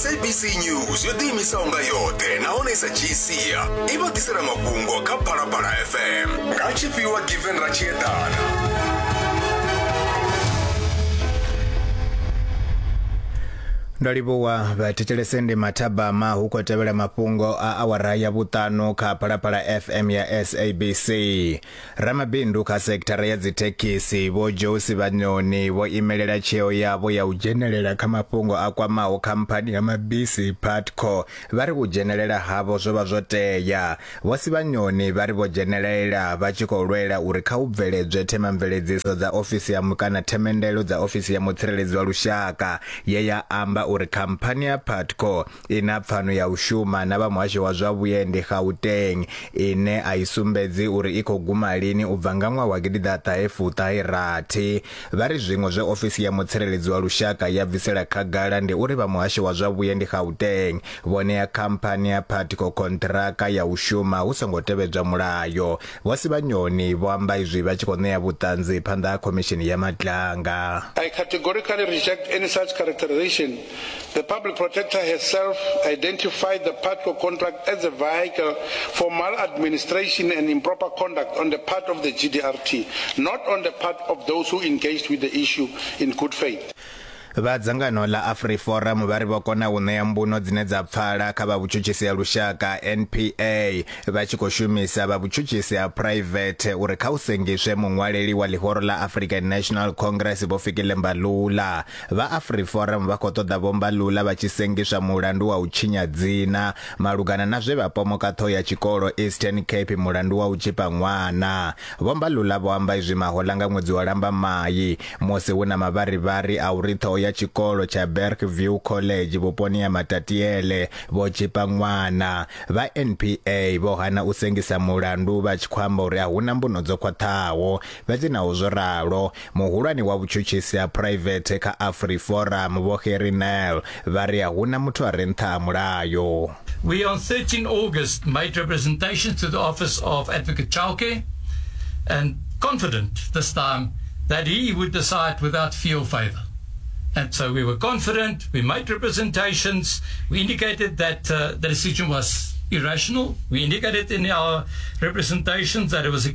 sabc news yo ḓiimisaho nga yoṱhe nahone sa gcia i vha ḓisela mafhungo kha phalaphala fm nga tshifhiwa given ra tshi eḓana ndo livhuwa vhathetshelese ndi mathabama hu khou tevhela mafhungo a awara ya vhuṱanu kha phalaphala fm ya sabc Ramabindu kha sekithara ya dzithekhisi Vho Joe Sivhanyoni vho imelela tsheo yavho ya u dzhenelela kha mafhungo a kwamaho khamphani ya mabisi Putco vha ri u dzhenelela havho zwo vha zwo tea. Vho Sivhanyoni vha ri vho dzhenelela vha tshi khou lwela uri kha hu bveledzwe themamveledziso dza ofisi ya kana themendelo dza ofisi ya mutsireledzi wa lushaka ye ya amba uri khamphani ya Putco ina pfano ya u shuma na vha muhasho wa zwa vhuendi Gauteng ine a i sumbedzi uri i khou guma lini u bva nga ṅwaha wa gidi ḓa ṱahe fuṱahe rathi vha ri zwiṅwe zwe ofisi ya mutsireledzi wa lushaka ya bvisela khagala ndi uri vha muhasho wa zwa vhuendi Gauteng vho ṋea khamphani ya Patco konṱiraka ya u shuma hu songo tevhedzwa mulayo vho Sibanyoni vho amba izwi vha tshi khou ṋea vhuṱanzi phanḓa ha khomishini ya matlanga I categorically reject any such characterization The public protector herself identified the PATCO contract as a vehicle for maladministration and improper conduct on the part of the GDRT, not on the part of those who engaged with the issue in good faith. Vha dzangano ḽa AfriForum vha ri vho kona u ṋea mbuno dzine dza pfala kha vha vhutshutshisi ha lushaka NPA vha tshi khou shumisa vha vhutshutshisi ha private uri kha u sengiswe muṅwaleli wa ḽihoro ḽa African National Congress Vho Fikile Mbalula Vha AfriForum vha khou ṱoḓa Vho Mbalula vha tshi sengiswa mulandu wa u tshinya dzina malugana na zwe vha pomoka ṱhoho ya tshikolo Eastern Cape mulandu wa u tzhipa ṅwana. Vho Mbalula vho amba izwi mahoḽa nga ṅwedzi wa Lambamai musi hu na mavharivhari a uri ṱhoho ya tshikolo tsha Bergview College vhuponi ha Matatiele vho tzhipa ṅwana. Vha NPA vho hana u sengisa mulandu vha tshi khou amba uri a hu na mbuno dzo khwaṱhaho. Fhedzi naho zwo ralo, Muhulwane wa vhutshutshisi ha phuraivethe kha AfriForum, Vho Gerrie Nel, vha ri a hu na muthu a re nṱha ha mulayo. We on 13 August made representations to the office of Advocate Chauke and confident this time that he would decide without fee or favour. And so we were confident, we made representations, we indicated that uh, the decision was irrational. We indicated in our representations that it was a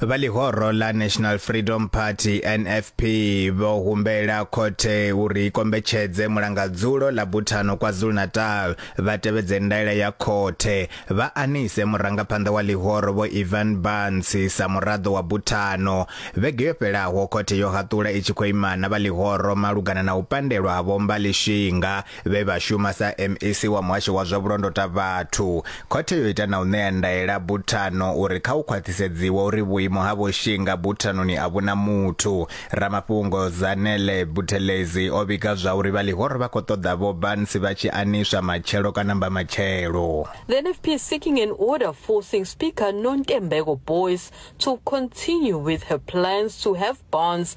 vha ḽihoro ḽa National Freedom Party NFP vho humbela khothe uri ikombetshedze mulangadzulo ḽa Buthano KwaZulu-Natal vha tevhedze ndaela ya khothe vha anise murangaphanḓa wa ḽihoro vho Ivan Barnes sa muraḓo wa Buthano vhege yo fhelaho khothe yo haṱula i tshi khou imana vha ḽihoro malugana na u pandelwa ha vho Mbali Shinga vhe vha shuma sa MEC wa muhasho wa zwa vhulondota vhathu. Khothe yo ita na u ṋea ndaela buthano uri kha u khwaṱhisedziwa uri vhuimo ha vho Shinga buthanoni a vhuna muthu. Ramafhungo Zanele Buthelezi o vhiga zwa uri vha ḽihoro vha khou ṱoḓa vho Barnes vha tshi aniswa matshelo kana mbamatshelo. The NFP is seeking an order forcing Speaker Nontembeko Boyce to continue with her plans to have Barnes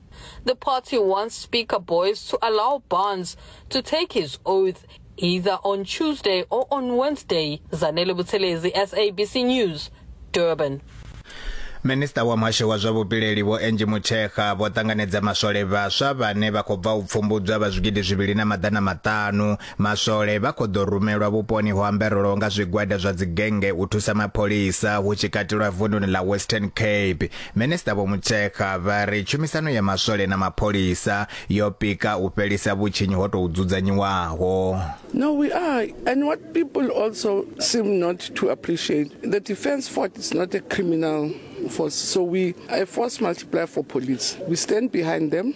The party wants Speaker Boyce to allow Barnes to take his oath either on Tuesday or on Wednesday. Zanele Buthelezi, SABC News, Durban. minista wa muhasho wa zwa vhupileli vho enji mutshekha vho ṱanganedza maswole vhaswa vhane vha khou bva u pfumbudzwa vha zwigidi zwivhili na maḓana maṱanu Maswole vha khou ḓo rumelwa vhuponi ho amberelwaho nga zwigwada zwa dzigennge u thusa mapholisa hu tshi katelwa vununi ḽa Western Cape. Minisiṱa Vho Mutshekga vha ri tshumisano ya maswole na mapholisa yo pika u fhelisa vhutshinyi ho tou dzudzanyiwaho. No, we are. And what people also seem not to appreciate, the Defence Force is not a criminal force. So we a force multiplier for police. We stand behind them.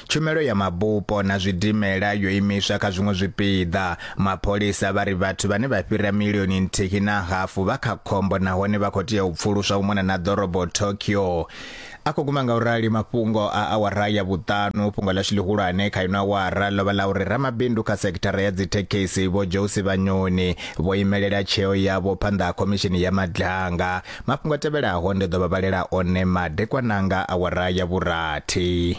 Tshumelo ya mabupo na zwidimela yo imiswa kha zwiṅwe zwipiḓa. Mapholisa vha ri vhathu vhane vha fhira milioni nthihi na hafu vha kha khombo nahone vha khou tea u pfuluswa u mona na ḓorobo Tokyo. A khou guma nga u rali mafhungo a awara ya vhuṱanu. Fhungo ḽashu ḽihulwane kha ino awara ḽo vha ḽa uri ramabindu kha sekithara ya dzithekhisi vho Josi Vhanyoni vho imelela tsheo yavho phanḓa ha khomishini ya madlanga. Mafhungo a tevhelaho ndi ḓo vha vhalela one madekwananga awara ya vhurathi.